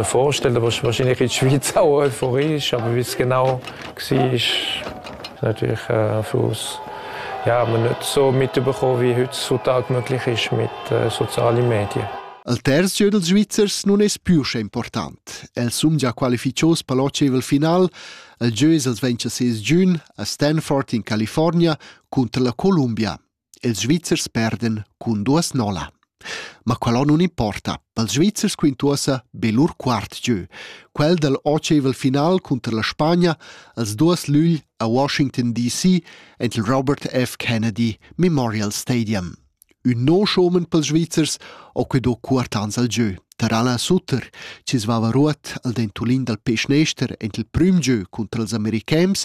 vorstelle was wahrscheinlich in Schweizer euphorisch aber wie genau ist natürlich äh, Fluss ja man nicht so mitbekommen wie heutzutage möglich ist mit äh, sozialen Medien Al terz gieu dals Svizzers nun es più sche important. El sumgia qualificios per l'oceval final. El gieu es els ventscha ses giun a Stanford in California cunter la Columbia. Ils Svizzers perdan cun duas nolla. Ma quella nun importa. Pels Svizzers quintuossa be lur quart gieu. Quel dal otschaivel final cunter la Spagna als duos lügl a Washington DC ent il Robert F. Kennedy Memorial Stadium. Ün no schomen pels Svizzers ho que do cuort ans al gieu. Tar Alain Sutter, chi svava ruot al dentulin dal peschnester ent il prüm gieu cunter els americans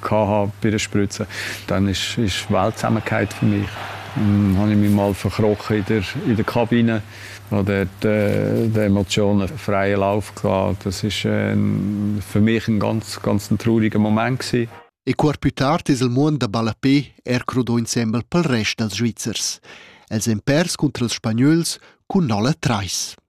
gehabt bei der Spritze, dann ist, ist Weltsamkeit für mich. Dann habe ich mich mal verkrochen in der, in der Kabine, wo der, die, die Emotionen freien Lauf hatten. Das war ein, für mich ein ganz, ganz ein trauriger Moment. Gewesen. E cuor pü tard es il muond da ballapé er crudò insembel pel rest dals Svizzers. Els èn pers cunter els Spagnols cun nolla trais.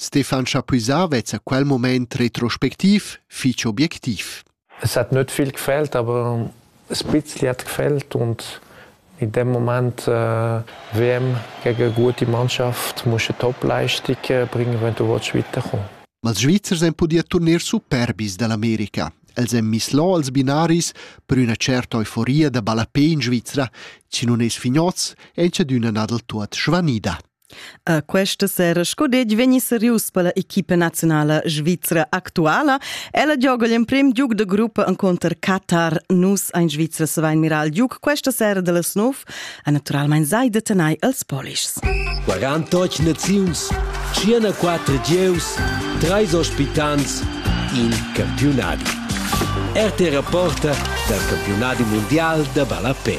Stefan Chapuisat vezza quel moment retrospectiv fich objectiv. Es hat nöt viel gefällt, aber ein bisschen hat gefällt und in dem Moment äh, WM gegen eine gute Mannschaft musst du Top-Leistung äh, bringen, wenn du willst weiterkommen Ma els Svizzers han pudì turnier superbis dall'America. Els han miss là als binaris per üna certa euforia da ballapé in Svizra, chi nun es fignoz e c'è d'üna nadel tuot svanida. Questa sera scodetg vegni serius per la equipa nazionala svizra actuala. Ella gioga l'emprim Duke de gruppa encontro Qatar. Nus ein Svizra savein mirar il Duke questa sera dallas 9. E naturalmein sai de tenai els polischs. 48 naziuns, 54 gieus, 3 ospitants, in campionadi. RT Rapporta dal campionadi mondial da ballapè.